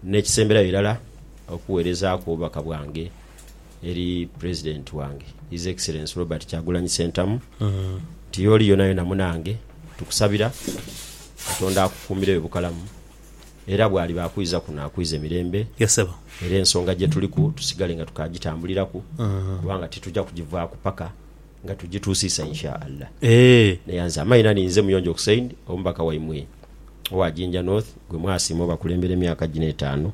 N'ekisemberayo irala, okuweerezaaku obubaka bwange eri President wange His Excellency Robert Kyagulanyi Ssentamu nti y'oli yonayona munange, tukusabira Katonda akukuumiregho bukalamu era bw'aliba akwiza kuno akwize mirembe era ensonga gye tuliku tusigale nga tukaagitambuliraku kubanga tituja kugivaaku paka nga tugituusiisa Insha Allah. Naye nze amaina ni nze Muyonjo Hussein, omubaka waimwe owa Jinja North gwe mwasiima obakulembera emyaka gino etaanu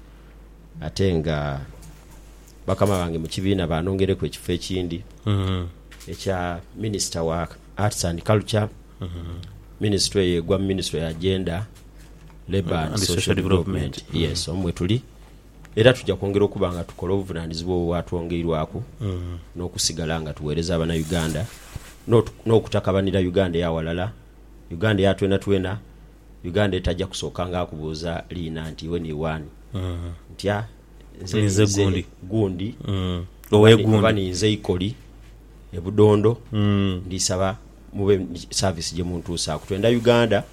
ate nga bakama bange mu kibiina baanongeireku ekifo ekindi ekya Minisita wa Arts and Culture, minisitule eyo egwa mu minisitule ya Gender, Labour and Social Development. Yes, omwo mwetuli Era tuja kwongera okuba nga tukola obuvunanizibwa obwo bwatwongeirwaku n'okusigala nga tuwereza abana Uganda n'okutakabanira Uganda eyawalala, Uganda eya twenatwena, Uganda etaja kusooka nga akubuuza liina nti iwe ni waani? Ntya? Nze ninze gundi oba ninze Ikoli e Budondo, ndisaba mube ni service gyemuntuusaaku. Twenda Uganda.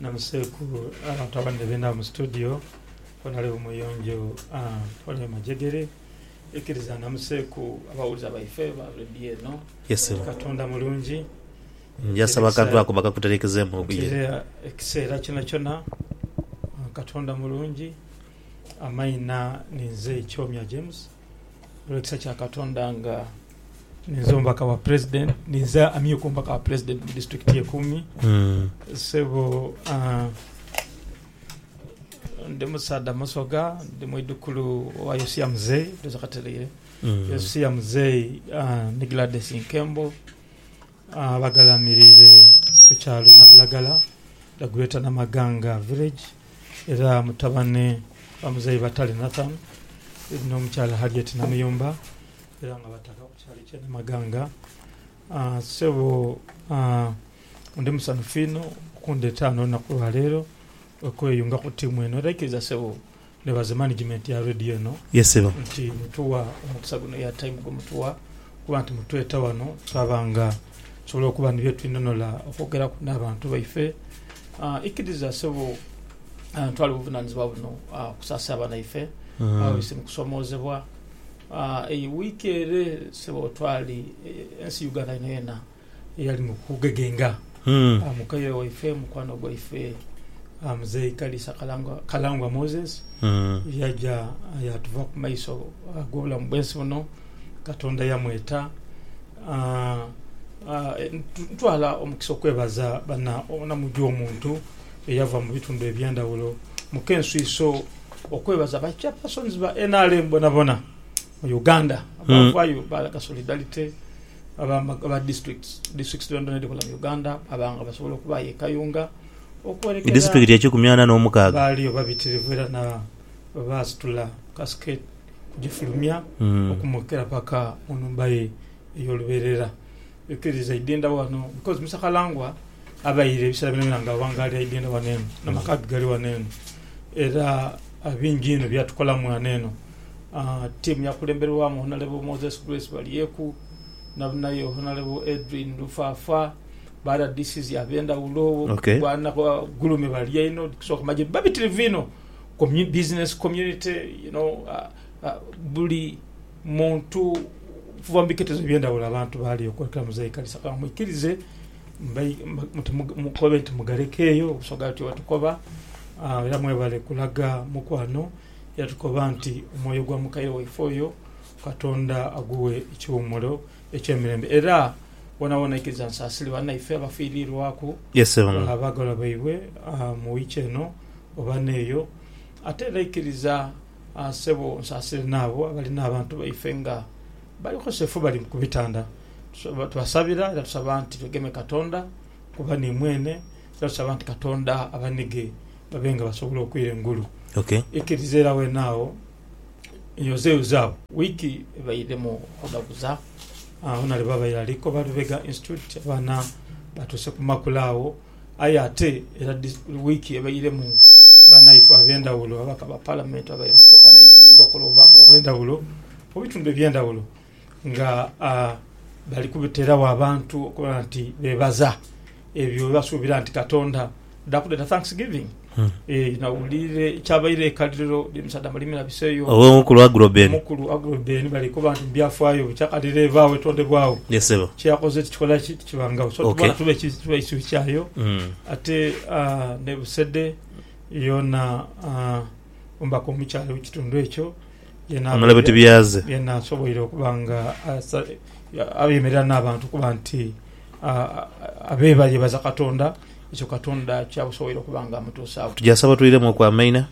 Namuseeku abantu abandi bena mu studio bonali bumuyonjo oli majegere ikiriza namuseeku abawuliza baife ba radio eno nti katonda mulungi nti era ekiseera kyonakyona katonda mulungi amaina ninze Kyomya James. olw'ekisa kya Katonda nga ninze omubaka wa President, ninze amyuka omubaka wa President mu district ye Kumi. Sebo ah, ndi musaadha musoga, ndi mwidhukulu wa Yosia Mzei, ndhooza katereire, Yosia Mzei ah, ni Gladys Nkembo. Abagalamirire ku kyalo Nabulagala, the Greater Namaganga Village, era mutabane wa muzeyi Batale Nathan no mukyala Harriet Namuyomba era nga bataka ku kyalo ekye Namaganga. Sebo ndi musanhufu inho okundeta ghano olunaku lwa leero okweyunga ku tiimu eno era ikiriza sebo Nebaza management ya radio eno nti mutuwa omukisa guno air time gwemutuwa kuba nti mutweta wano twaba nga tusobola okuba ni byetwinonhola okwogeraku n'abantu baife. Ikiriza sebo ntwala obuvunanizibwa buno okusaasira abaana baife ababaise mu kusomoozebwa. Eyo wiiki ere sebo twali ensi Uganda yonayona eyali mu kugegenga aa mukaire waife, mukwano gwaife aa Muzei Kalisa Kalangwa, Kalangwa Moses, yaja yaatuva ku maiso ag'obulamu bw'ensi buno, Katonda yamweta. Aa, aa, ntu, ntwala omukisa okwebaza bana omunamuju omuntu eyava mu bitundu eby'endhawulo mu kenswiso, okwebaza ba Chairpersons ba nrm bonabona. Mu Uganda, abavayo balaga solidarity aba districts districts dhoonadhoona edhikola mu Uganda baba nga basobola okubaayo e Kayunga okwerekera Disitulikiti ekikumi ana n'omukaaga. Baaliyo babitirivu era na bwe baasitula Casket kugifulumya okumwokera paka mu nhumba ye ey'olubeerera. Ekiriza aidhenda wano because Mister Kalangwa abaire ebisera byona byona nga awangalira aidhenda wano eno na maka ge gali wano eno era bingi inho byatukolamu wano eno. Team yakulemberwamu Honorable Moses Grace Balyeku naye Honorable Edrine Lufafa, ba rdcs abendhaghulo bwana Gulume bali einho okusoka ku magye babitirivu inho, business community you know buli... Muntu okuva mu biketezo eby'endhaghulo abantu baali okwekolamu za ikanisa. Ka mwikirize mukobe nti mugalekeeyo Busoga ati Watukoba era mwebale kulaga mukwano era tukoba nti omwoyo gwa mukaire waife oyo Katonda agughe ekiwummulo eky'emirembe era woonawoona aikiriza nti asaasire banaife abafiiriirwaku abaagalwa baibwe mu wiiki eno oba n'eyo. Ate era aikiriza. Aah sebo onsasire naabo abali n'abantu baife nga bali bukosefu bali ku bitanda. Tubasabira era tusaba nti begeme Katonda kuba ni mwene era tusaba nti Katonda abanige babe nga basobola okwira engulu. Ikiriza era wenaagho yozeyozeagho. Wiiki ebaidhemu okudhaguza abaana lwe baabaire ali Koba Lubega Institute, abaana baatuuse ku makula agho. Aye ate era wiiki ebairemu banaife ab'endhaghulo, ababaka ba Palamenti abaire mu kwokanha ebibiina okola obubaka obw'endhaghulo mu bitundu eby'endhaghulo nga bali kuteragho abantu okuba nti beebaza ebyo bye basuubira nti Katonda adha kudha dha Thanksgiving. Nawulire kyabaire ekaliriro ly'emisaadha mu limi na bise eyo. Owe omukulu Aguroben. Omukulu Aguroben bali koba nti mu byafaayo bikyakalirira ebaawo etondebwagho. Yes ssebo. Kyeyakoze tikikola ki tikibangagho so Okay. tubona tube ki tube kisubi kyayo Mm. ate ah, ne Busede yoona ah, omubaka omukyala owe kitundu ekyo yena Honourable Tibyaze. yena asoboire okuba nga asa ayemerera n'abantu okuba nti ah, abebayebaza Katonda. Ekyo Katonda kyabusoboire okuba nga amutuusa agho. Tuja saba tweiremuku amaina.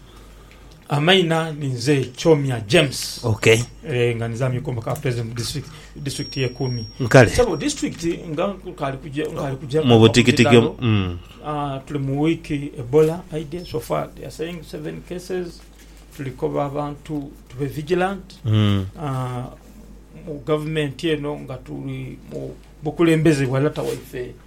Amaina ni nze Kyomya James. Ok. Eeh nga nizamya okomba ka president mu district district ye Kumi. Kale. Sebo district nga nkali kuja nkali kuja mu butikitiki omu umm. Aah tuli mu week Ebola aidye so far they are saying seven cases tuli koba abantu tube vigilant aah mu government eno nga tuli mu bukulembeze bwa lata waife.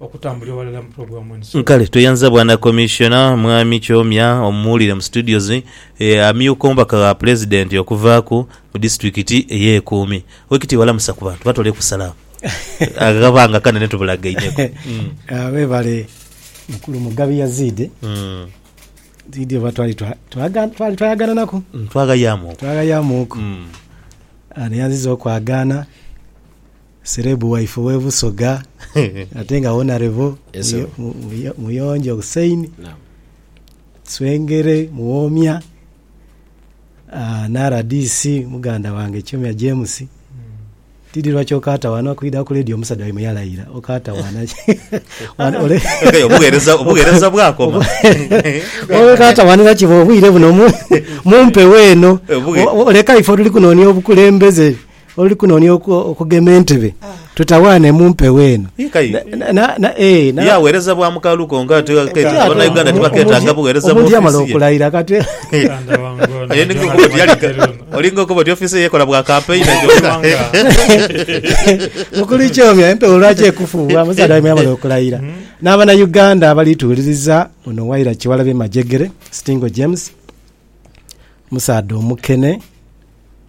okutambulira ghalala mu pulogulaamu eno. Kale tweyanziza Bwana Commissioner Mwami Kyomya omuwulire mu studios ye amyuka omubaka gha Pulezidenti okuvaaku mu disitulikiti ey'ekuumi. Wekitiibwa lamusa ku bantu batoleku salaamu akabanga kanene tubulagainheku. Webale mukulu Mugabi Yazid Zidi oba twali twayagananaku Twaghayaamuuku. twaghayaamuuku neyanziza okwagaana. Serebu waife owe Busoga ate nga Wonarebo Muyonjo Hussein Swengere Muwomya na rdc muganda wange Kyomya James tidhi lwaki okaata wano kwidha ku ledio omusaadha waimwe yalaira okaata wano obughereza bwakoma okaata wano era kiba obwire buno mumpewo eno leka ife otuli kunonia obukulembeze. Oli kunoonia okugema entebe, tutawaane mu mpewo eno. Ye agheereza bwa mukalu konka ate akeeta Banauganda tibakeetaaga bugheereza mu ofiisi ye. Olinga okoba oti ofiisi ye ekola bwa kampeyina gyoka. Mukulu Ichomya, empewo lwaki ekufuuwa? Musaadha waimwe yamala okulayira. N'Abanauganda abali tuwuliriza, ono Waira Kiwalabe Majegere, Stingo James, musaadha omukene.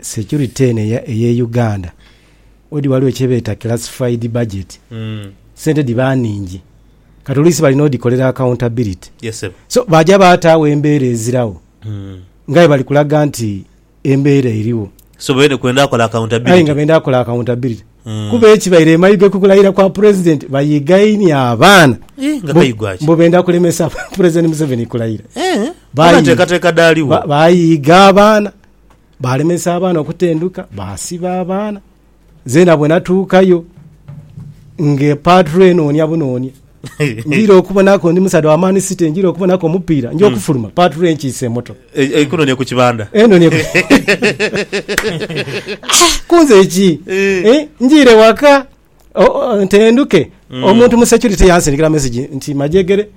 Security eno eya eye Uganda odi waliwo kyebeeta classified budget sente diba ningi kati oluisi balina odikolera accountability Yes sebo. so baja bataawo embeera ezirawo ngaye bali kulaga nti embeera eriwo So bene kwenda akola aye nga accountability. benda kola accountability Mm. kuba ekibaire emayiga kukulaira kwa president bayigaini abaana Eh, nga mbu- kayigwa ki? mbu benda kulemesa president Museveni kulaira Eh, Bayi- oba nteekateeka dhaaliwo. ba- bayiiga abaana Baalemesa abaana okutenduka, baasiba abaana. Zeena bwenatuukayo nge paatulo enoonia bunoonia njira okubonaku ndi musaadha wa Man City njira okubonaku omupiira nja okufuluma hmm. paatulo enkiise moto e, e, ikunonia ku kibanda enonia kunze ki eh. eh, njire waka ntendhuke mm. omuntu mu security yansindikira message nti majegere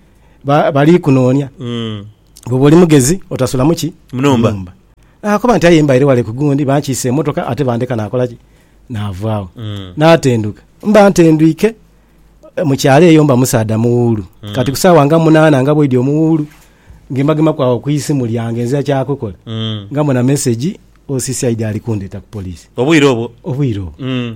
bali kunonya mm. bwoba oli mugezi otasulamu ki munumba nakoba nti aye mbaire wale kugundi bankiisa emotoka ate bandeka nakola ki navaawo mm. natenduka mba ntendwike eh, mukyalo eyo mba musaadha muwuulu mm. kati kusaawa nga munaana nga bwedi omuwuulu ngembagema kwawo ku isimu lyange nzira kyakukola mm. nga muna message osisi aidi ali kundeta ku polisi obwire obwo obwire obwo mm.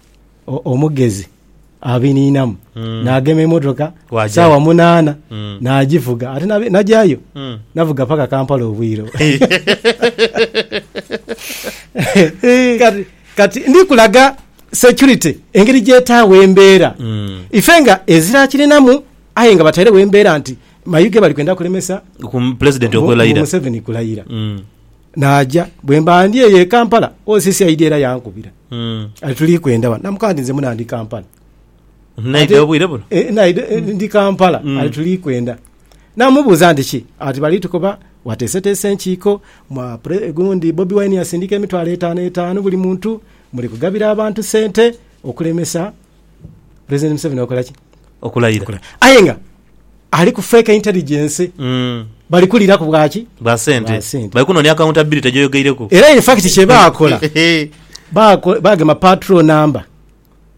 omugezi abiniinamu naagema emotoka saawa munaana naagivuga ate nagyayo navuga paka Kampala obwire kati ndikulaga security engeri gyetaawa embeera ife nga ezirakirinamu aye nga batairewo embeera nti mayuge bali kwenda kulemesa Pulezidenti okulayira. Naaja. Bwe mba ndi eyo e Kampala, o Sisi aidha era yankubira ati, Tuli kwenda wano. Namukoba nti, Nze muna ndi Kampala. Naidha obwire buno? E, naidha e, ndi Kampala. Ati, Tuli kwenda. Namubuuza nti, Ki? Ati, Bali tukoba wateeseteese enkiiko, mwa pre, gundi Bobi Wine yasindika emitwalo etaano etaano buli muntu, muli kugabira abantu sente okulemesa Pulezidenti Museveni okola ki? Okulayira. Aye nga. Ali ku fake intelligence. Bali kuliraku bwa ki? Bwa sente. Bwa sente. Bali kunoonia accountability gy'oyogeireku. Era in fact kye baakola, baako- baagema patrol number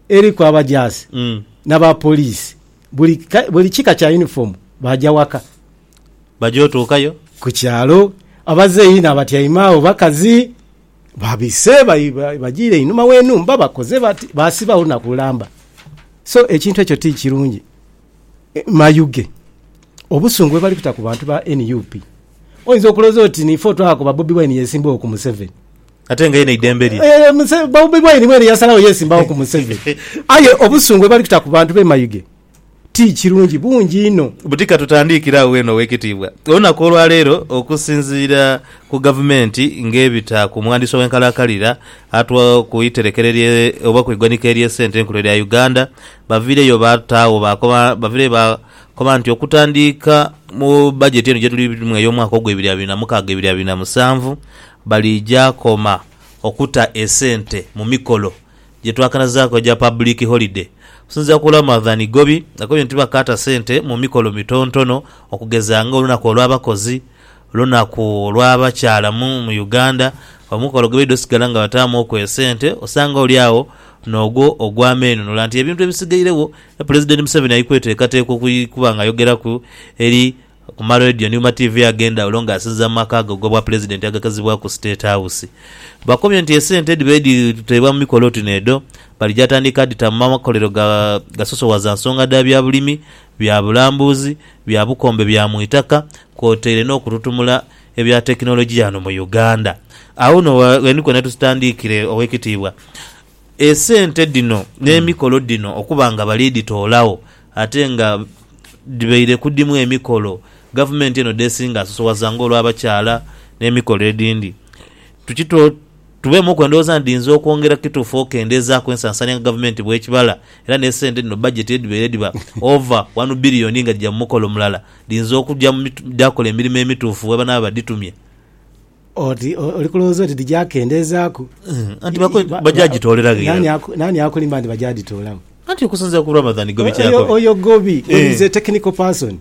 eriku abajaasi Mm. n'abapoliisi. Buli ka- buli kika kya uniform baaja waka. Baja otuukayo. Ku kyalo abazeeyi n'abatyaime agho bakazi babise bai- bai- bajiire einhuma w'enhumba bakoze bati, baasibagho na ku lamba. So ekintu ekyo ti kirungi. Mayuge, obusungu bwebali kuta ku bantu ba nup oyinza okuloza oti nife otwaha kuba Bobi Wine yesimbagho ku Museveni. Ate nga yena eidembe lye. Eeh Bobi Wine mwene yasalagho yesimbagho ku Museveni. Aye obusungu bwebali kuta ku bantu be Mayuge ti kirungi, bungi inho. Buti katutandikire agho wena owekitiibwa. Olunaku olwaleero okusinziira ku gavumenti ngebita ku mwandiisi ow'enkalakalira atwa ku iterekero oba ku igwanika ery'esente enkulu erya Uganda, baviireyo baataagho baakoba baviireyo baakoba nti okutandiika mu bajeti eno gye tulimu ey'omwaka ogw'ebiri abiri na mukaaga ebiri abiri na musanvu baliija koma okuta esente mu mikolo gye twakanazaaku egya public holiday. Okusinziira ku Ramadhan Igobi, akobye nti bakaata sente mu mikolo mitontono okugeza ng'olunaku olw'abakozi, Lunaku lw'abakyala mu mu Uganda, omukolo gwebaidha osigala nga bataamu oku esente, osanga oli agho n'ogwo ogw'ameenunula nti ebintu ebisigairegho Pulezidenti Museveni ali kweteekateeka okuba nga ayogeraku eri ku ma Radio ni ku ma TV ag'endhaghulo nga asinziira mu maka ge ag'Obwapulezidenti agaghazibwaku State House. Bakomye nti esente edhibaire dhiteebwa mu mikolo oti n'edho, baligya tandika dhita mu makolero ga gasosowaza nsonga dha bya bulimi, bya bulambuzi, bya bukombe bya mu itaka, kwotaire n'okututumula ebya tekinologiya ghano mu Uganda. Aghuno ghe ni kwene tusitandiikire, Oweekitiibwa, esente dhino n'emikolo dhino okuba nga bali dhitoolagho ate nga dhibaire ku dhimu emikolo Gavumenti eno dh'esinga asosowaza ng'olw'abakyala n'emikolo edhindi. Tuki twe tubeemuku endowooza nti dhiinza okwongera kituufu okendeezaaku ensasaanya nga Gavumenti bw'ekibala era n'esente dhino bajeti edhibaire dhiba ova wanu bbiriyoni nga dhija mu mukolo mulala. dhiyinza okuja mu dhaakola emirimo emituufu bwe banaaba badhitumye. Oti oli kulowooza oti dhija kendeezaaku? Anti baja gitooleraghera. Naani aku, naani akulimba nti baja dhitoolagho? Anti okusinziira ku Ramadhan Gobi kyeyakola. Oyo Gobi, Gobi is a technical person.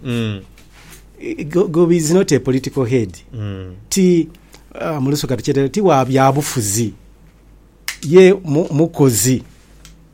Gobi is not a political head. Ti mu lusoga tukyetera, ti wa byabufuzi. Ye mukozi.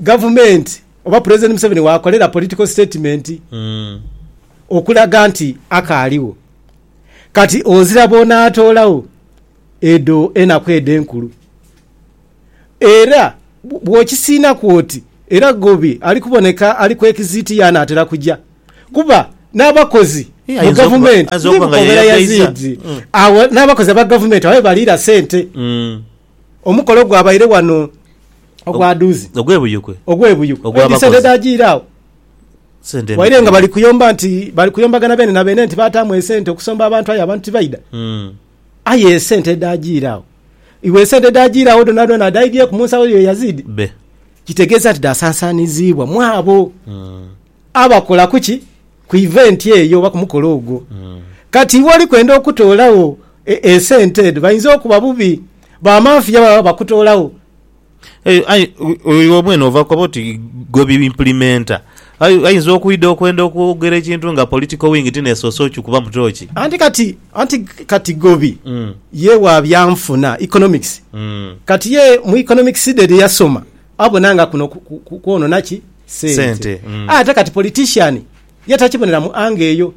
Gavumenti oba Pulezidenti Museveni waakolera political statement okulaga nti akaaligho. Kati ozira bw'onaatoolagho edho enaku edho enkulu. Era bw'okisiinaku oti era Gobi ali kuboneka ali ku exit ye anaatera kuja. Kuba n'abakozi mu Ayinza okuba- gavumenti ayinza okuba nga ye yagaiza. Agho n'abakozi aba gavumenti agho ye baliira sente. Omukolo gwabaire ghano ogwa dhuuzi. Ogwebuyukwe. Ogwebuyukwe. Edhi sente edhajiire agho. Waire nga bali kuyomba nti bali kuyombagana beene na beene nti baataamu esente okusomba abantu aye abantu tibaidha. Hmm. Aye esente edhajiire agho. Iwe esente edhajiire agho dhonadhona dhaidhieku mu nsawo yo Yazidi? Be. Kitegeeza nti dhaasansaaniziibwa mwabo. Hmm. Abakola ku ki? Ku iventi eyo oba ku mukolo ogwo. Kati iwe oli kwenda okutoolagho esente edho, bainza okuba bubi, bamanfiya baba bakutoolagho. Aye, aye iwe mwene ova koba oti gwe bi implimenta. Aye ainza okwidha okwenda okwogera ekintu nga political wing ti nesoose okikubamu tooki. Anti kati, anti kati Gobi ye wa byanfuna, economics, kati ye mu economics dhe dhi yasoma, Abona nga kuno kwonona ki? Sente. Ate kati politician ye takibonera mu angle eyo.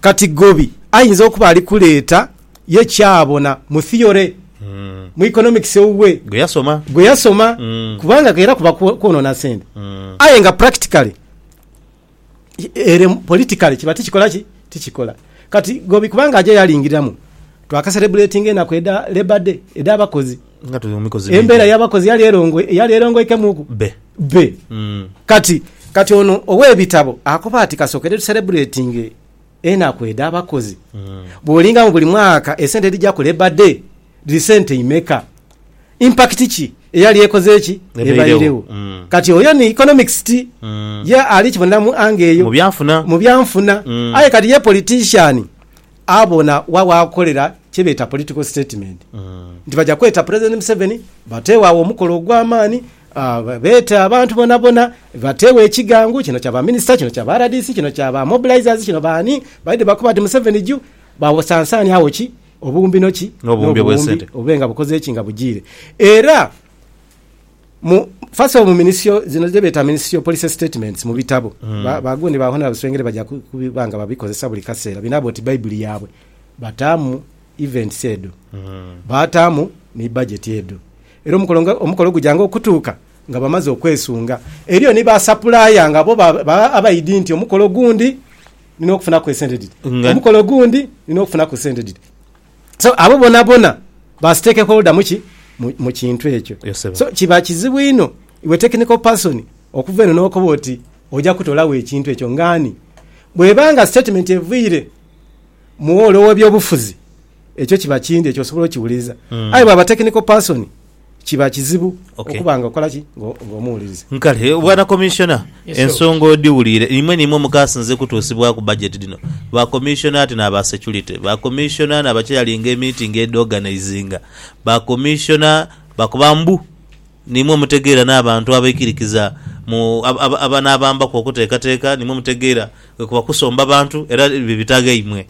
Kati Gobi ayinza okuba ali kuleeta ye kyabona mu theory, mu economics ewuwe, gwe yasoma, kubanga era kuba kwonona sente. Aye nga practically. ere politically kiba tikikola ki tikikola kati gobi kubanga aja yalingiriramu twaka celebratinga enaku edha labour day edha bakozi embera yabakozi yali erongo yali erongoikemuku be be mm. kati kati ono owebitabo akoba ati kasokere tu celebratinge Enaku edha bakozi bwolinga mu buli mwaka esente edhija ku labour day dhiri sente imeka? Impact ki eyali ekoze ki? Ebairewo. Kati oyo ni economics ti ye ali kibonera mu angle eyo. Mu byanfuna. Aye kati ye politician abona wa wakolera kye beta political statement nti baja kweta president Museveni bategho agho omukolo ogwa maani. Beeta abantu bonabona batewo ekigangu, kino kya ba minister, kino kya ba rdc, kino kya ba mobilizers, kino baani, baidhi bakoba nti Museveni juu, basansaanie agho ki obuwumbi no ki n'obuwumbi bube nga bukoze ki nga bujiire. Era mu first of all mu minisitio zino dhe beeta minisitio policy statements mu bitabo ba gundi ba Hon. Swengere baja kuba nga babikozesa buli kaseera binaaba oti baibuli yaabwe, bataamu events edho, baataamu ni budget edho. Era omukolo nga omukolo gujanga okutuuka nga bamaze okwesunga. Eriyo ni ba sapulaaya nga bo baba abaidhi nti omukolo gundi nina okufunaku esente dhiti, Nga- omukolo gundi nina okufunaku sente dhiti. So abo bonabona ba stakeholder mu ki? Mu- mu kintu ekyo. Yes, sebo. So kiba kizibu inho iwe technical person okuva eno n'okoba oti oja kutolawo ekintu ekyo nga ani? Bweba nga statement eviire mu woolo w'ebyobufuzi, ekyo kiba kindi ekyo osobola okiwuliriza mm. aye bwaba technical person kiba kizibu okay. okuba nga okola ki ng'omuwuliriza nkale bwana commissioner yes, ensonga odiwulire imwe nimwe mukasinze kutuusibwaku budget dino ba commissioner ati n'aba security ba commissioner n'abakyeyalinga emeeting edoganizinga ba commissioner bakuba mbu nimwe mutegeera n'abantu abaikirikiza mu abanabambaku okuteekateeka nimwe mutegeera kuba kusomba bantu era bibitaga imwe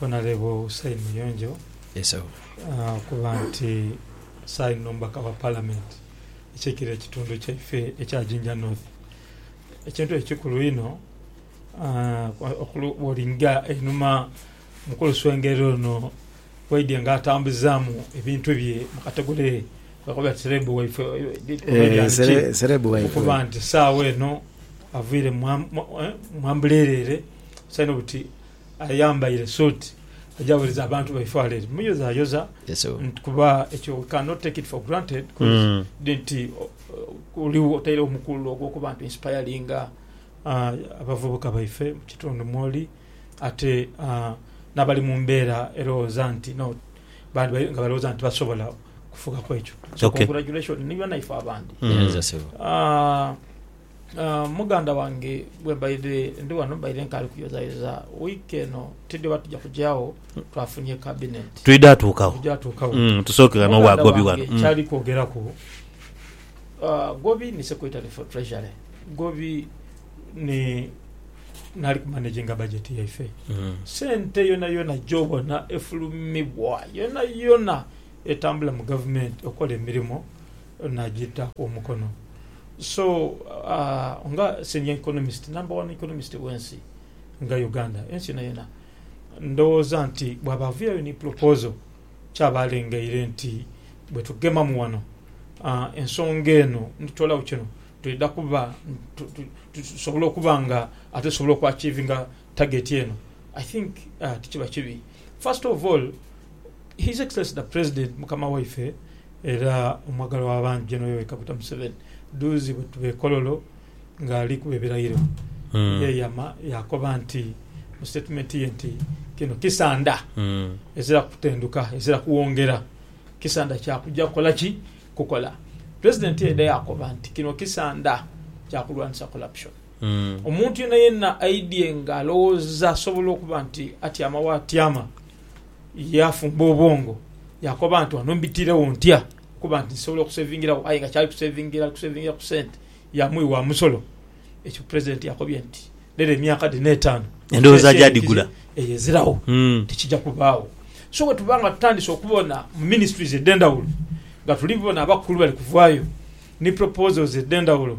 Honourable Hussein Muyonjo okuba nti saino n'omubaka wa parliament akiikira ekitundu kyaife ekya Jinja North. Ekintu ekyo kikulu inho bwolinga einhuma mukulu Swengera ono bwaidye nga atambuzamu ebintu bye mukategole kwebakoba nti celeb waife oba erya biki okuba nti sawa eno avire mwambulere ere saino buti Ayambaire suuti aja wereza abantu baife wala eri muyozayoza kuba ekyo we cannot take it for granted mm. nti oliwo otairewo omukululo ogwokuba nti inspiringa uh, abavubuka baife mu kitundu mwoli ate uh, n'abali mu mbeera erowooza nti no nga balowooza nti basobola kufugaku ekyo so okay. congratulation nibanaife abandi mm. uh, Muganda wange gwe mbaire ndi wano mbaire nkaali kuyozayoza wiiki eno tidhi oba tuja kuja agho twafunye Kabinenti. Twidha atuuka agho. Twidha atuuka agho. Tusooke ghano wa Gobi wano. Muganda wange kyali kwogeraku, Gobi ni Secretary for Treasury, Gobi ni naali ku managinga bajeti yaife. Sente yonayona gy'obona efulumibwa yonayona etambula mu Gavumenti okola emirimo Naagita omukono. So nga Senior Economist, Number One Economist w'ensi nga Uganda, ensi yonayona, ndowooza nti bwaba aviirayo ni proposal, kyaba alengeire nti bwetugemamu wano, ensonga eno nitutoolawo kino, twidha kuba tusobola okuba nga ate tusobola oku achievinga target eno. I think tikiba kibi. First of all, His Excellency the President, Mukama waife, Era omwagalwa w'abangi Gen Yoweri Kaguta Museveni dhuuzi bwetuba e Kololo nga ali kuba ebirayiro yeeyama yaakoba nti mu sitatimenti ye nti kino kisanda ezira kutendhuka, ezira kuwongera, kisanda kya kuja kukola ki? Kukola. Pulezidenti yaidha yaakoba nti kino kisanda kya kulwanisa Corruption. Omuntu yenayena aidhye nga alowooza asobola okuba nti atyama waatyama. Yaafumba obwongo yaakoba nti ghano mbitiregho ntya okuba nti nsobola okusevingiragho aye nga kyali kusevingira ali kusevingira ku sente ya mwi wa musolo. Ekyo Pulezidenti yakobye nti lero emyaka dhino etaanu Endowooza agya dhigula. eyo eziragho tikija kubaagho. So bwe tuba nga tutandise okubona mu ministries edh'endhawulo nga tuli bona abakulu bali kuvaayo ni proposals edh'endhawulo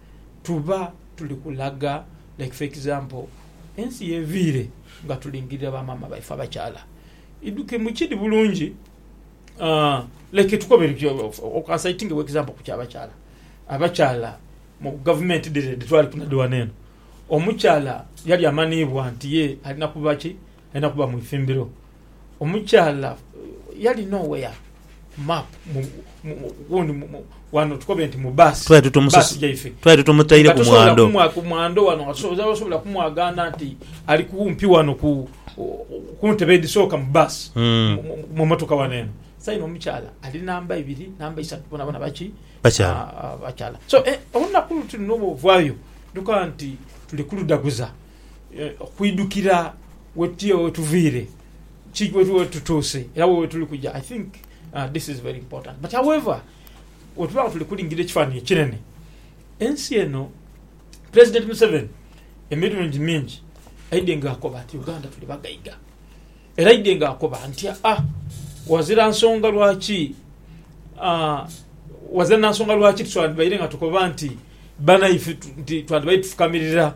tuba tuli kulaga like for example ensi yeviire nga tulingirira ba maama baife abakyala idhuke mukidi bulungi like tukobe citing for example ku kyabakyala abakyala mu gavumenti dhire dhitwaliku na dhi wano eno omukyala yali amanhiibwa nti ye alina kuba ki Alina kuba mu ithimbiro. Omukyala yali nowhere ku map gundi wano tukobe nti mu bus bus jaife twali tutumutaire ku mwando ku mwando wano nga tosobola kumwagana nti ali kumpi wano ku kuntebe edisooka mu bus mm. mu motoka wano eno saino omukyala ali namba ibiri namba isatu bona bona baki bakyala ah, ah, bakyala so eh, olunaku luti luno bwovayo duka nti tuli kuludaguza okwidhukira wetuviire, ki wetutuuse era wa wetuli kuja i think this is very important but however wetuba nga tuli kulingirira ekifanhanhi ekinene ensi eno president museveni emirungi mingi aidhye nga akoba nti uganda tuli bagaiga era aidhye nga akoba nti aa wazira nsonga lwaki aa wazira nansonga lwaki tusandibaire nga tukoba nti banaife twandibaire tufukamirira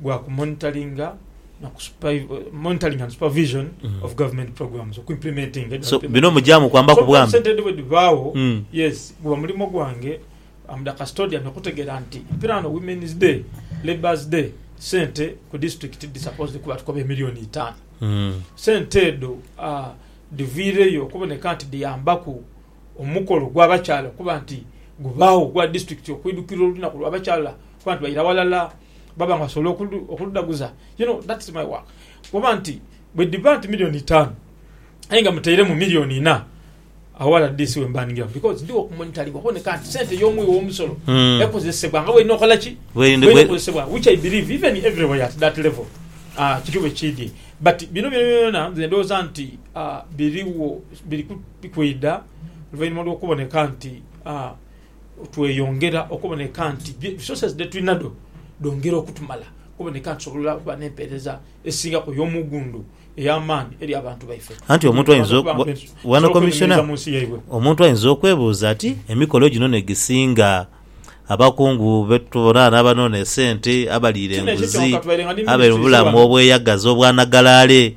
gwa ku monitoringa na ku supai- monitoring and supervision of government programs oku implementinga edha so government. bino mujamu kwambaku So, bwami sente edho bwedhibaawo Mm. yes guba mulimo gwange am the custodian okutegeera nti mpira wano women's day labours day sente ku district dhi supposed kuba tukoba emillion itaanu Mm. sente edho ah, dhiviireyo okuboneka nti dhiyambaku omukolo gw'abakyala okuba nti gubaawo ogwa district okwidhukira olunaku lw'abakyala okuba nti baira walala baba nga basobola okuludhaguza you know that's my work kuba nti bwedhiba nti milioni itaanu aye nga muteiremu milioni ina awo rdc wemba ningiramu because ndhigho ku monitoring okuboneka nti sente ey'omughi w'omusolo Mm. ekozesebwa nga bwelina okola ki Bwelina- bwelina bwe- okozesebwa which i believe even everywhere at that level Ah, kiri bwe kiri but bino byonabyona nze ndowooza nti ah, biriwo biri ku- biri kwidha oluvainhuma lw'okuboneka nti ah, Tweyongera okuboneka nti resources dhetulinadho dhongera okutumala okuboneka nti tusobola okuba n'empeereza esingaku ey'omughundhu ey'amaani eri abantu baife. Anti omuntu aidha okuba nti tusobola okwenenhereza mu nsi yaibwe. Omuntu aidha okwebuuza ati, Emikolo gino n'egisinga? Abakungu be tubona n'abanoonia esente, abaliira enguzi, abeebulamu obweyagaza obwanagalaale,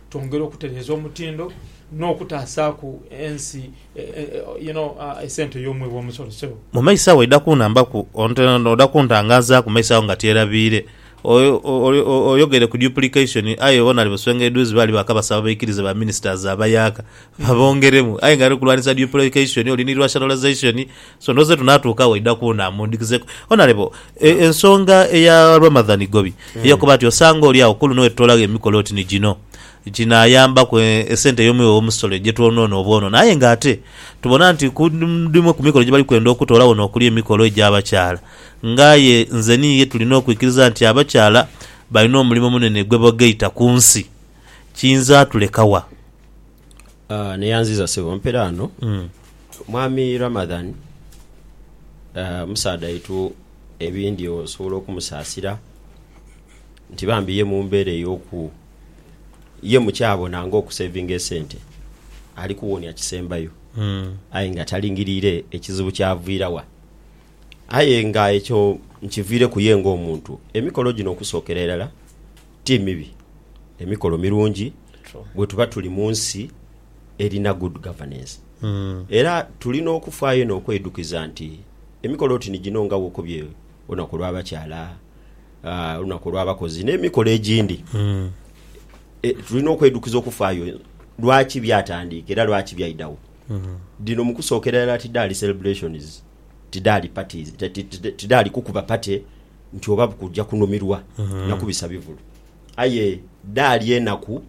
twongere okutereeza omutindo n'okutaasaaku ensi you know esente y'omwi w'omusolo ssebo. Mu maiso agho oidha kunhambaku oidha kuntangazaaku mu maiso agho nga tyerabiire. Oyogere ku duplication aye bona ali buswenga edhuuzi baali baakabasaba baikirize ba ministers abayaaka babongeremu aye nga ali kulwanisa duplication oli ni rationalisation So ndoze tunatuuka waidha kuuna mundikizeku Honourable e, ensonga eya Ramadhan Gobi eyokuba nti osanga oli agho kuluno wetutolagho emikolo oti ni gino ginayambaku e, esente eyomwiwe womusolo egyetwonoona obwonono aye nga ate tubona nti ku dhimu kumikolo gyebali kwenda okutoolagho nokuli emikolo egyabakyala nga aye nze ni iye tulina okwikiriza nti abakyala balina omulimo omunene gwebogaita kunsi kiyinza tulekawa? Neyanziza sebo mpere ano mwami Ramadhan musaadha waitu ebindhi osobola okumusasira nti bambi ye mumbera eyoku ye mukyabona nga okusevinga esente ali kuwonia kisembayo aye nga talingirire ekizibu kyavira wa aye nga ekyo nkivireku ye nga omuntu emikolo gino okusokera irala. Ti mibi, emikolo mirungi bwetuba tuli mu nsi erina good governance. Era tulina okufaayo inho okweidukiza nti emikolo oti ni gino nga wokobye olunaku olw'abakyala, olunaku olw'abakozi n'emikolo egindi, tulina okweidukiza okufaayo lwaki byatandiika era lwaki byaidagho. Dhino mu kusookera irala tidhaali celebrations, tidhaali parties, tidhaali kukuba party. nti oba bukuja kunumirwa na kubisa bivulu. Aye dhaali enaku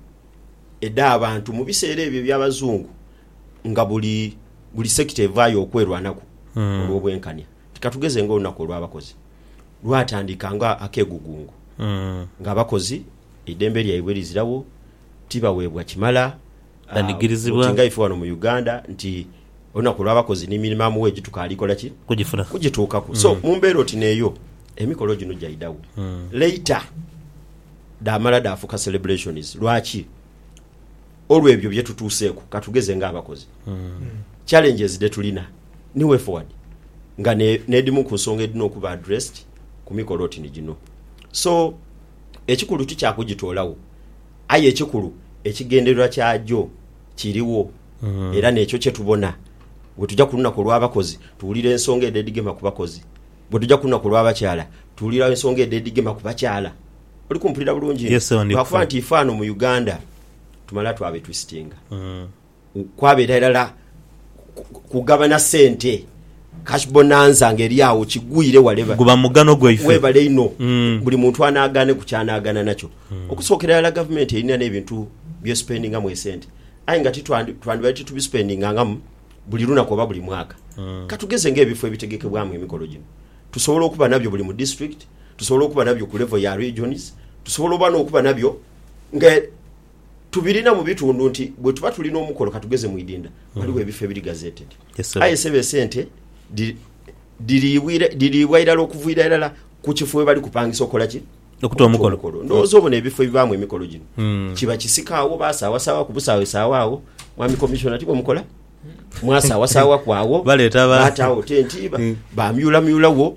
edh'abantu mu biseera ebyo eby'Abazungu nga buli buli sekita evaayo okwerwanaku olw'obwenkania. Nti katugeze ng'olunaku olw'abakozi lwatandika nga akegugungo, nga abakozi eidembe lyaibwe lizirawo, tibaweebwa kimala, Banigirizibwa. nti nga ife wano mu Uganda nti Olunaku olw'abakozi ni mirimo amuwa egituka ali kola ki? Kugifuna. Kugituukaku. So, mu mbeera oti n'eyo, emikolo gino gyaidagho. Later, dhaamala dhaafuuka celebrations. Lwaki? Olw'ebyo bye tutuuseeku. Ka tugeze ng'abakozi, challenges dhe tulina ni way forward, nga ne, n'edhimu ku nsonga edhina okuba addressed ku mikolo oti ni gino. So, ekikulu ti kya kugitoolagho, aye ekikulu ekigendererwa kyagyo. Kirigho era n'ekyo kye tubona bwe tuja ku lunaku olw'abakozi, tuwulira ensonga edh'edhigema ku bakozi. Bwe tuja ku lunaku olw'abakyala, tuwulira ensonga edh'edhigema ku bakyala. Oli kumpulira bulungi inho? Yes, awo ndi Lwakuba kufa. nti ife ghano mu Uganda tumala twabetwisitinga, kwabeera irala kugabana sente cash bonanza nga eri awo kigwire wale guba mugano gwaife webale ino mm. buli muntu anagane ku kyanagana nakyo mm. okusokera yala government erina nebintu bye spending mu esente ayi nga titwandi twandi bali titubi spending nga buli lunaku oba buli mwaka mm. katugeze nga ebifo ebitegekebwamu emikolo gino tusobola okuba nabyo buli mu district tusobola okuba nabyo ku level ya regions tusobola oba nokuba nabyo nga tubirina mu bitundu nti bwe tuba tuli n'omukolo katugeze mu idinda waliwo mm. ebifo ebiri gazeted aye sebo esente diriibwa irala okuviira irala ku kifo we bali kupangisa okukola ki okuta omukolo ndowooza obona ebifo ebibaamu emikolo gino mm. kiba kisikaawo basaawasaawa ku busaawa esaawa awo mwami komisiona ti bwemukola mwasaawasaawa kwawo baleeta bataawo tentiiba mm. bamyulamyulawo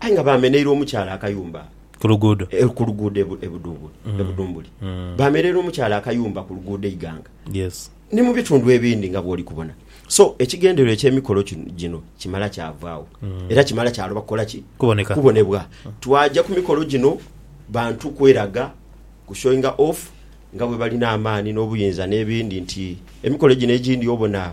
Aye nga baameneire omukyala akayumba ku luguudo ku luguudo e Budumbuli. Baameneire omukyala akayumba ku luguudo e Iganga ni mu bitundu ebindi nga bw'oli kubona. So, ekigendererwa eky'emikolo gino kimala kyavaagho era kimala kyaloba kukola ki? Kubonebwa. Twaja ku mikolo gino bantu kweraga, ku showinga off nga bwe balina amaani n'obuyinza n'ebindi nti emikolo gino egindi obona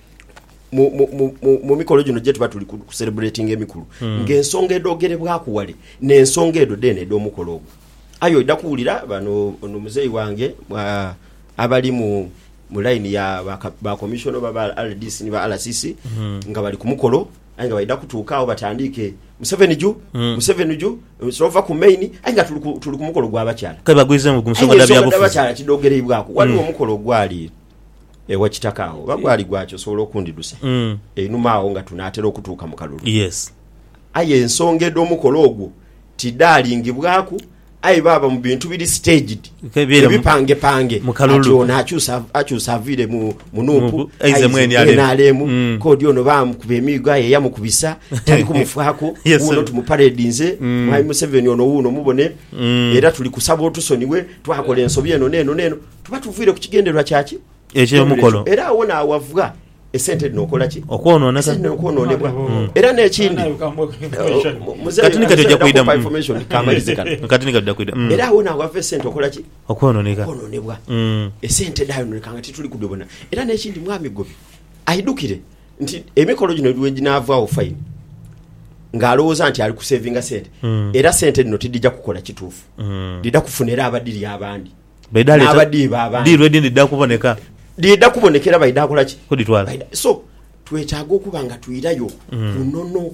mu mikolo gino gyetuba tuli ku celebrating emikulu hmm. nga ensonga edogerebwaku wale nensonga edo dene edomukolo ogwo aye oida kuwulira bano ono muzeyi wange abali mu mu line ya ba commission oba ba rdc ni ba rcc hmm. nga bali ku mukolo aye nga baida kutuuka awo batandiike museveni ju hmm. museveni ju sova ku main aye nga tuli ku mukolo gwabakyala kale bagwize mu gumusoga dabakyala kidogereibwaku waliwo omukolo ogwali Ewa Kitaka agho oba gwali gwaki osobola okundhidusa einhuma agho nga tunaatera okutuuka mu kalulu. Yes. Aye ensonga edh'omukolo ogwo tidhaalingibwaku aye baaba mu bintu biri staged, ebipangepange ati ono akyusa akyusa aviire mu mu Nup aize mu nrm, k'odi ono baamukuba emiigo aye eyamukubisa tali kumufaaku, wuuno tumuparedinze Mwami Museveni ono wuuno mubone era tuli kusaba otusonighe twakola ensobi eno n'eno n'eno. Tuba tuviire ku kigendererwa kya ki? Eky'emukolo. Era awo naawavwa esente dhino okola ki? Okwonooneka. Esente dhino okwonoonebwa. Mm. Era n'ekindi Kati ni kati ojja kuidamu. Mm. information kamalize kano Mm, Kati ni kati dakwida. Mm. era awo naawava esente okola ki? Okwonooneka. Okwonoonebwa. Mm. esente dhayononeka nga tituli kudhibona era n'ekindi mwami gwe aidukire nti emikolo gino lweginaavaawo fayini ng'alowooza nti ali kusevinga sente Mm. era sente dhino tidhija kukola kituufu Mm. dhidha kufunera abadhiri abandi Baidha leeta- n'abadiiba abandi. Ddi lwe dhindidha kuboneka? Dhidha kuboneka era baidha kola ki? Kudhitwala. Baidha- So, twetaaga okuba nga twirayo ku nono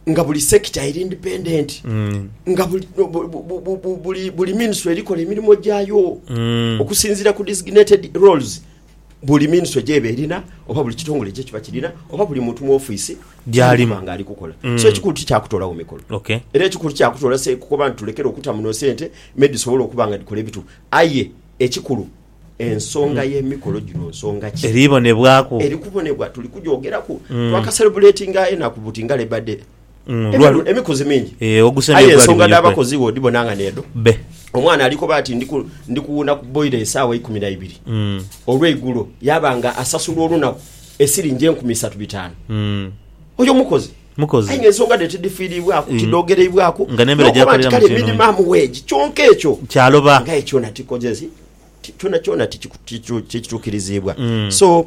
nga buli sector eri independent, nga buli, bu- bu- bu- bu- bu- buli, buli ministry erikola emirimo gyayo okusinziira ku designated roles Buli minisitule gyeba erina oba buli kitongole gyekiba kirina oba buli muntu mu ofiisi gyaliba nga ali kukola mm. so ekikulu tikyakutolawo mikolo okay. era ekikulu kyakutola se kukoba nti tulekere okuta muno sente maybe tusobole okuba nga dikola ebitu aye ekikulu ensonga mm. y'emikolo gino nsonga ki eribonebwaku eri kubonebwa tuli kugyogeraku mm. twakaserebuletinga enaku buti nga Labour Day Emiru emikuzi mingi. Aye ensonga dh'abakozi bwe odhibona nga n'edho. Omwana ali koba ati ndi kuwuuna ku boira esaawa eikumi na ibiri olweigulo yaaba nga asasulwa olunaku esiringi enkumi isatu bitaanu, oyo mukozi. Aye nga ensonga dhe tidhifiiriibwaku, tidhoogereibwaku n'okuba nti kale minimum wage. Kyonka ekyo nga aye kyona tikoze ki? Kyonakyona tikituukiriziibwa. So.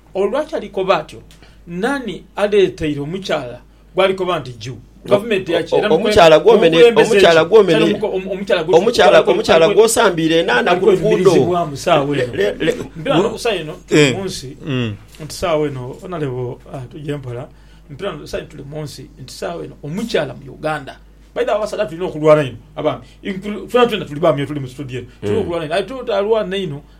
Olwatalikoba atyo, naani aleeteire omukyala gwalikoba nti juu? Gavumenti yaki? Era omukulembeze ki? Omukyala gw'osambiire enaana ku luguudo. Saawa eno mpira no kusa eno tuli munsi nti saawa eno onalebo tuje mpola mpira no kusa tuli munsi nti saawa eno omukyala mu Uganda by the abasaadha tulina okulwana inho abaami fena twena tuli baami otuli mu studio eno tulina okulwana inho aye tutalwana inho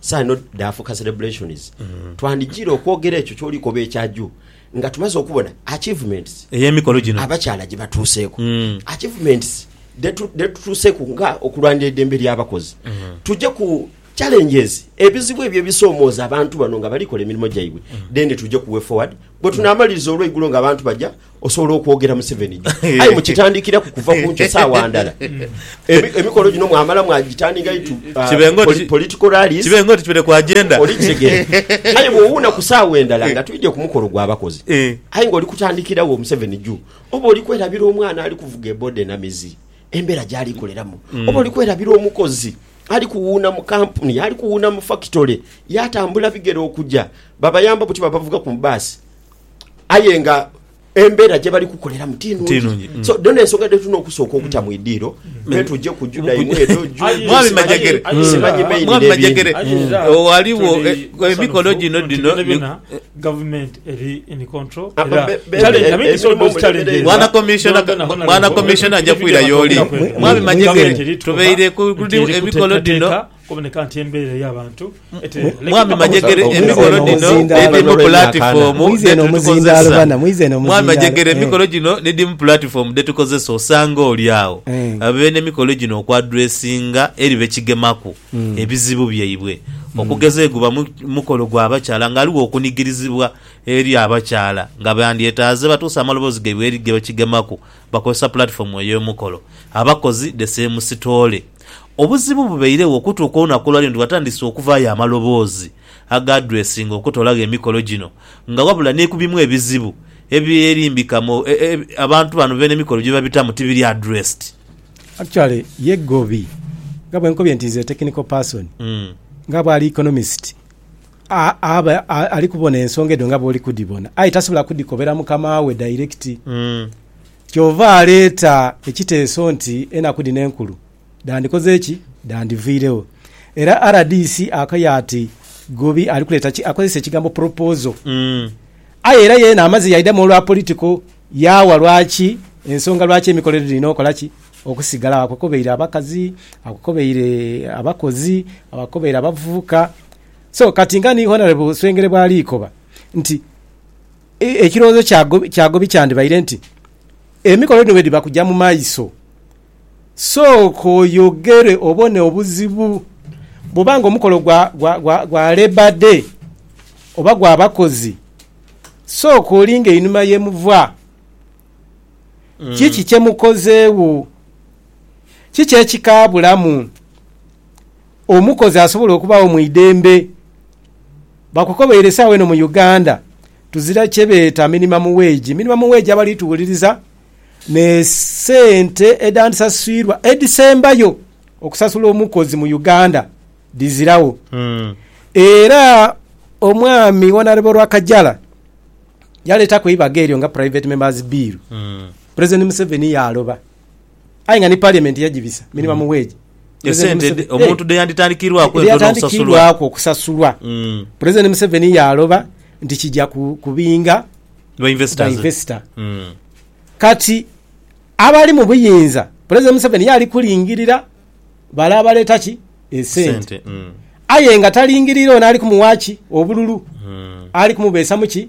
Saino dhaafuuka celebrations. Twandijiire okwogera ekyo ky'oli koba ekya juu nga tumaze okubona achievements Ey'emikolo gino. abakyala gye batuuseeku. Mm. Achievements dhe tu- dhe tutuuseeku nga okulwanira eidembe ly'abakozi. Tuje ku challenges, ebizibu ebyo ebisoomooza abantu bano nga bali kola emirimo gyaibwe, then tuje ku way forward, bwe tunaamaliriza olweigulo nga abantu baja osobola okwogera museveni jo aye mukitandikiraku kuva kunkyo saawa ndala emikolo gino mwamala mwagitandika itu uh, political rallies kibe nga oti kibere ku agenda olikitegere aye bwowuuna ku saawa endala nga twidye ku mukolo gwabakozi eh. aye nga oli kutandikirawo museveni juu oba oli kwerabira omwana ali kuvuga ebode na mizi embeera gyali koleramu mm. oba oli kwerabira omukozi ali kuwuuna mu kampuni ali kuwuuna mu fakitole yatambula bigere okuja babayamba buti babavuga ku baasi aye nga embeera gye bali kukoleramu ti nungi mm. so dhona ensonga dhe tulina okusooka okuta mu idiiro mm. netujja okujuda imwe edo mwami majegere mwami majegere waliwo emikono gino dino government eri in control ah, era challenge i mean so those challenges mwana commissioner mwana commissioner ajja kwira yoli mwami majegere tubeire ku emikono dino Kuboneka nti embeera ey'abantu etereere. Mwami Majegere emikolo gino nidhimu pulatifomu dhetukozesa. Mwami Majegere emikolo gino nidhimu pulatifomu dhetukozesa osanga oli agho abaire n'emikolo gino okwadresinga eri bekigemaku ebizibu byaibwe okugeza eguba mukolo gwa bakyala nga ghaligho okunigirizibwa eri abakyala nga bandyetaaze batuuse amaloboozi gaibwe eri gebakigemaku bakozesa pulatifomu ey'omukolo. Abakozi the same sitoole. Obuzibu bubairegho okutuuka olunaku olwaleero nti watandise okuvaayo amaloboozi agaadresinga okutolagho emikolo gino nga wabula ni ku bimu ebizibu ebyerimbika mu abantu bano beene emikolo gyebabitamu tibiri addressed. Actually ye Gobi nga bwenkobye nti is a technical person nga bwali economist aba alikubona ensonga edho nga bwoli kudhibona aye tasobola kudhikobera mukama we direct. Kyova aleeta ekiteeso nti enaku dhino enkulu dhandikoze ki? Dhandhiviiregho. Era rdc akaye ati Gobi ali kuleeta ki? Akozesa ekigambo proposal. Aye era yeena amaze yaidhamu olwa political yaawa lwaki ensonga lwaki emikolo edhirina okola ki? Okusigalagho. Akokobeire abakazi, akokobeire abakozi, akokobeire abavubuka. So kati nga ni Honourable Swengere bwali koba nti. Ekirowoozo ky'agobi kyandibaire nti, Emikolo dhino bwedhiba kuja mu maiso, sooka oyogere obone obuzibu. Bwoba nga omukolo gwa Labour Day oba gwa bakozi, sooka olinge einhuma ye muva. Kiki kye mukozeegho? Kiki ekikaabulamu? Omukozi asobola okubagho mu idembe. Bakukobeire esaawa eno mu Uganda tuzira kyebeeta minimum wage. Minimum wage abali tuwuliriza ne sente edhandisasilwa edhisembayo okusasula omukozi mu Uganda dhiziragho. Era omwami Honourable Rwakajara yaletaku eibaga eryo nga private member's bill, President Museveni yaaloba. aye nga ni Parliament yagibisa minimum wage. President Esente Museve- dhe- omuntu eh, dheyanditandikirwaku entono okusasulwa. dheyatandikirwaku okusasulwa. Mm. President Museveni yaaloba nti kija ku- kubinga Ba investors. bainvesita. Mm. Kati abali mu buyinza, President Museveni yaali kulingirira bale abaleeta ki esente. Sente. Mm. Aye nga talingirira ono ali kumuwa ki obululu, Mm. ali kumubeesamu ki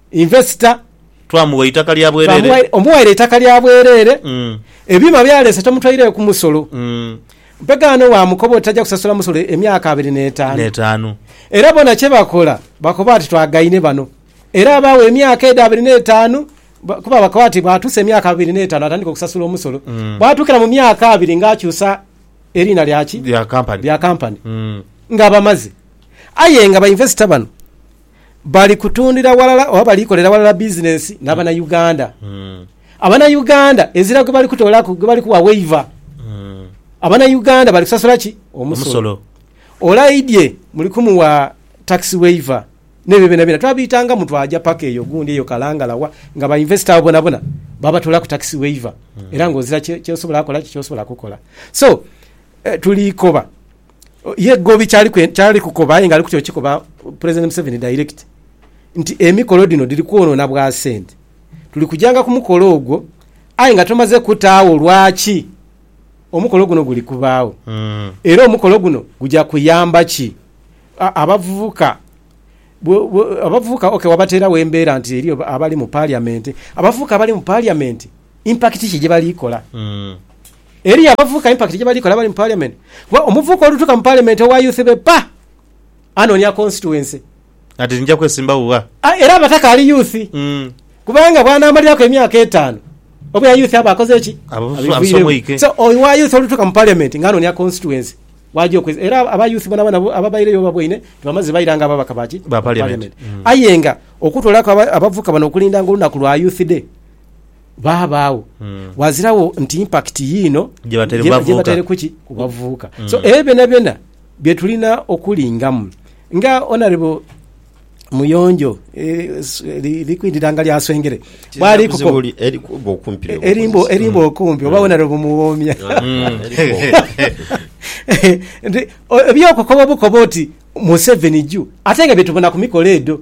Investor. Twamugha eitaka lya bwerere. Omuwaire eitaka lya bwerere. Ebyuma by'aleese tomutwaireeku musolo. Mpegaano bwamukoba oti taja kusasula musolo emyaka abiri n'etaanu. Era bona kye bakola bakoba ati twagaine bano. Era abaawo emyaka edho abiri n'etaanu kuba bakoba ati bw'atuusa emyaka abiri n'etaanu atandika okusasula omusolo. Bw'atuukira mu myaka abiri ng'akyusa eriina lya ki? Lya kampani. Ng'aba amaze. Aye nga ba investor bano. Bali kutundira walala oba bali kolera walala bizinensi na Banauganda. Abanauganda ezira gwe bali kutoolaku, gwe bali kuwa waiver. Abanauganda bali kusasula ki? Omusolo. Olaidhye muli kumuwa tax waiver n'ebyo byonabyona. Twabiitangamu twaja paka eyo gundi eyo Kalangala wa, nga ba investor abo bonabona babatoolaku tax waiver era ng'ozira kye, kye osobola kola ki, ky'osobola kukola. So, tuli koba Ye Gobi kyali kukoba aye nga ali kutya okikoba Pulezidenti Museveni dayirekiti nti emikolo dhino dhiri kwonoona bwa sente. Tuli kujanga ku mukolo ogwo aye nga tumaze kutaagho lwaki omukolo guno guli kubaagho era omukolo guno guja kuyamba ki abavubuka. Abavubuka ok wabateeragho embeera nti eriyo abali mu paliyamenti, abavubuka abali mu paliyamenti impakiti ki gye bali kola? Eriyo abavubuka impact gyebali kola abali mu parliament kuba omuvubuka olutuka mu parliament owa youth be pa anonia constituency. Ati nja kwesimbawo gha. A era aba takaali youth kubanga bwanamaliraku emyaka etaanu obwira youth aba akoze ki? Abiviiregho. So owa youth olutuka mu parliament nga anonia constituency waja okwesi era aba youth bonabona ababaireyo baboine nti bamaze baira nga ababaka ba ki? Ba parliament. Aye nga okutolaku abavubuka bano okulindanga olunaku lwa youth day, baabaagho waaziragho nti impakiti yiino gyebataire kuki ku bavubuka. So ebyo byonabyona bye tulina okulingamu. Nga Honourable Muyonjo li ku idhanga lya Swengere bwalikuko, erimba okumpi oba Honourable Muwoomya eby'okukoba bukoba oti Museveni juu ate nga bye tubona ku mikolo edho.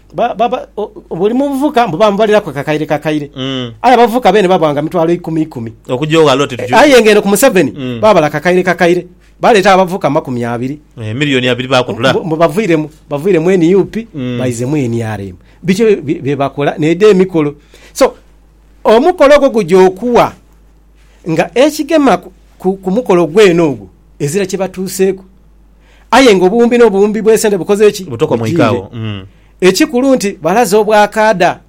ba- ba- ba- o- buli muvubuka mbu bamubalilaku akakaire kakaire Mm. aye abavubuka beene babwanga mitwalo ikumi ikumi okugya oghala oti tuju- aye ng'eno ku museveni Mm. babala kakaire kakaire baleeta abavubuka mu makumi abiri Eh, miliyoni abiri bakutula mbu- mbu baviiremu baviiremu nup Mm. baizemu nrm biki bye- bye- byebakola needa emikolo so omukolo ogwo gugya okuwa nga ekigema ku- ku ku mukolo gwene ogwo ezira kyebatuuseeku Aye nga obuwumbi n'obuwumbi bw'esente bukoze ki? Bujiire. Ekikulu nti balaze obwakaada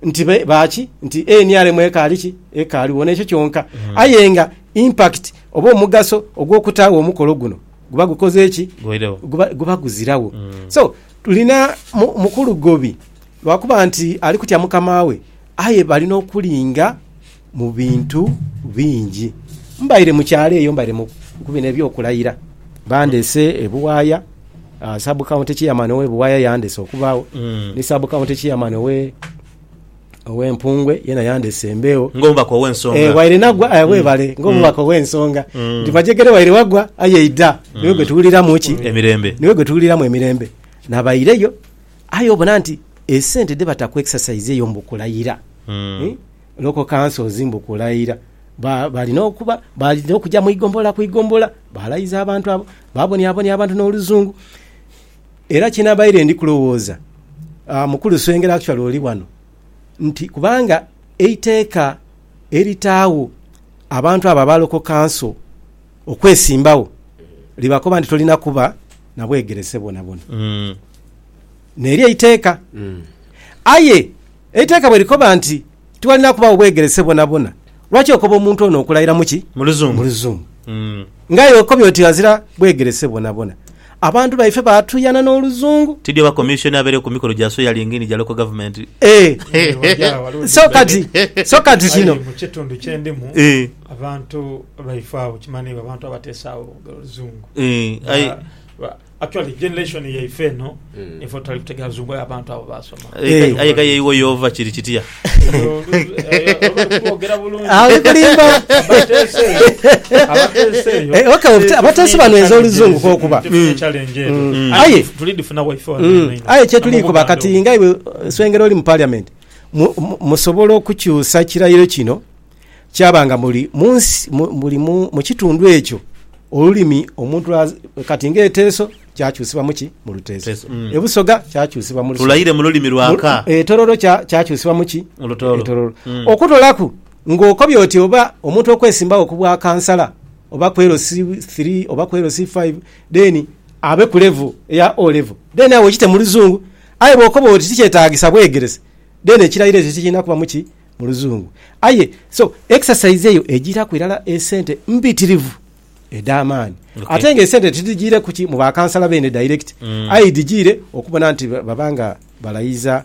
nti ba ki? Nti nrm ekaali ki? Ekaaligho. N'ekyo kyonka. Aye nga impact oba omugaso ogw'okutaagho omukolo guno guba gukoze ki? Guba guziragho. So, tulina Mukulu Gobi lwakuba nti ali kutya mukama we, aye bali n'okulinga. mu bintu bingi. Mbaire mu kyalo eyo, mbaire mu ku bino eby'okulayira. Bandeese ebuwaaya, Sub County Chairman owe Buwaaya yandeese okubaagho, ni Sub County Chairman owe owe Mpungwe yena yandeese embeegho. Ng'omubaka ow'ensonga. Eh, waire nagwa, eh, webale, ng'omubaka ow'ensonga. Ndi majegere waire wagwa, aye idha, niwe gwe tuwuliramu ki? Emirembe. Niwe gwe tuwuliramu emirembe. Nabaireyo, aye obona nti esente dhebata ku exercise eyo mbu kulayira. Eh? Lokoka Nsozi mbu kulaira. Ba, balina okuba, balina okuja mu igombola ku igombola, baalaiza abantu abo, baaboniabonia abantu n'oluzungu. Era kye nabaire ndi kulowooza, ah, Mukulu Swengera, actually oli wano, nti kubanga eiteeka eritaagho abantu abo aba Local Council okwesimbagho libakoba nti tolina kuba na bwegerese bwonabwona. N'eryo eiteeka. Aye Eiteeka bwe likoba nti tiwalina kubagho bwegerese bwonabwona, lwaki okoba omuntu ono okulaira mu ki? Mu Luzungu. Nga aye okobye oti ghazira bwegerese bwonabwona. Abantu baife baatuuyana n'Oluzungu. Tidhi oba Commission abeere ku mikolo gya swearing in gya Local Government. Eeh! So kati, so kati kino. Aye mu kitundu kye ndimu, abantu baife agho kimanhiibwa abantu abateesaagho lugero Luzungu. Eeh! Aye. Actually generation yaife eno mm. ife tutali kutegera luzungu aye abantu abo basoma eh. aye kaye iwe yova kiri kitya abateesi banwenza oluzungu kokuba mm. mm. aye aye kyetuliikuba kati nga iwe swengera oli mu parliament musobola okukyusa kirayiro kino kyaba nga muli mu nsi, muli mu, mu kitundu ekyo olulimi omuntu lwa, kati nga eteeso kyakyusibwa mu ki? Mu luteeso. Teeso, mm. Ebusoga kyakyusibwa mu lusoga. Tulaire mu lulimi lwa ka. Mu- Etororo kya- kyakyusibwa mu ki? Mu lutooro. Etororo. Mm. Okutolaku ng'okobye oti oba omuntu okwesimbawo ku bwa kansala oba ku LC 3 oba ku LC 5 then abe ku level eya O level then awo okite mu luzungu aye bw'okoba oti tikyetaagisa bwegerese then ekirairo ekyo tikirina kubamu ki? mu luzungu aye so exercise eyo ejiraku irala esente mbitirivu edhamaani okay. Ate nga esente tidhijiire kuki mu bakansala beene direct mm. Aye dhijiire okubona nti baba nga balayiza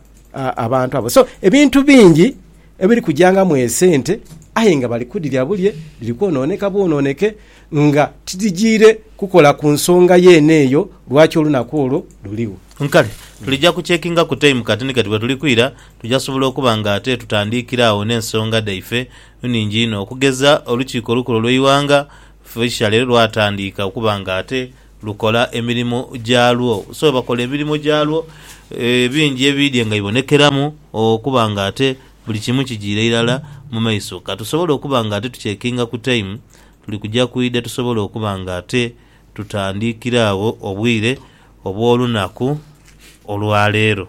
abantu abo so ebintu bingi ebiri kujangamu esente aye nga bali kudhirya bulye dhiri kwonooneka bwonooneke nga tidhijiire kukola ku nsonga yeene eyo lwaki olunaku olwo luligho nkale tulija kucekinga ku time kati ni kati bwetuli kwira Tuja sobola okuba nga ate tutandiikira agho n'ensonga dhaife nningi inho. Okugeza, Olukiiko Olukulu Olw'eighanga Feisha leero lwatandiika okuba nga ate lukola emirimo gyalwo. So bakola emirimo gyalwo bingi ebiidhye nga bibonekeramu okuba nga ate buli kimu kijiire irala mu maiso. Ka tusobole okuba nga ate tuchekinga ku taimu, tuli kuja kwidha tusobole okuba nga ate tutandiikira agho obwire obw'olunaku olwa leero.